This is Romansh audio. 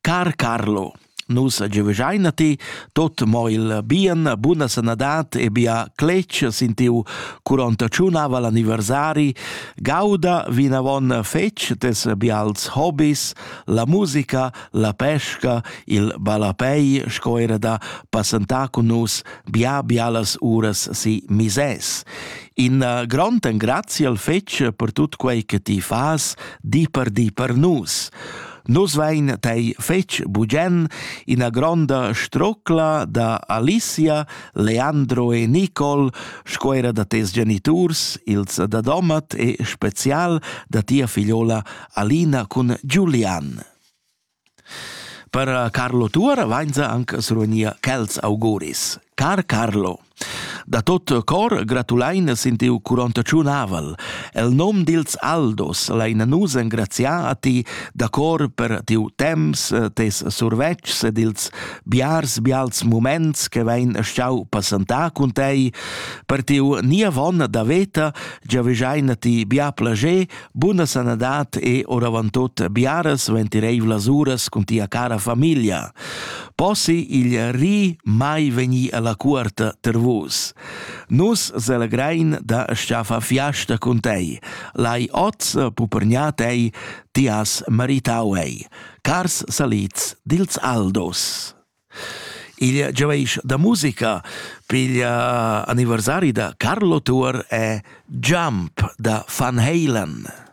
Car Carlo, nus giuvegiain a ti tot mo il bien, buna sanadad e bia cletg sin tiu curontaciun aval anniversari. Gauda vinavon fetg tes bials hobis, la musica, la pesca, il ballapei sco era da passentar cun nus bia bialas uras si misès. In eh, grond engrazi al fetg per tut quei che ti fas di per di per nus. Nus vein tei fetg bugen ina gronda strocla da Alicia, Leandro e Nicole, sco era da tes geniturs, ils da Domat e spezial da tia figliola Alina cun Giulian. Per Carlo Tuor vainza anche srunia quels auguris. Car Carlo! Da tot cor gratulein els in tiu curontaciun aval. El nom dils Aldos lein nus engraziar a ti da cor per tiu temps, tes survetschs ed ils biars bials moments che vein stau passentar cun tei, per tiu niavon da veta, giavegiain ti bia plager Buna sanadad e oravantut biaras ventireivlas uras cun tia cara famiglia. Possi il ri mai vegni alla cuorta ter vus. Nus selegrein da sciaffa fiasta cun tei. Lai oz pupernia tei, ti has maritau ei. Cars salids dils Aldos. Il giaveisch da musica piglia anniversari da Carlo Tuor e Jump da Van Halen.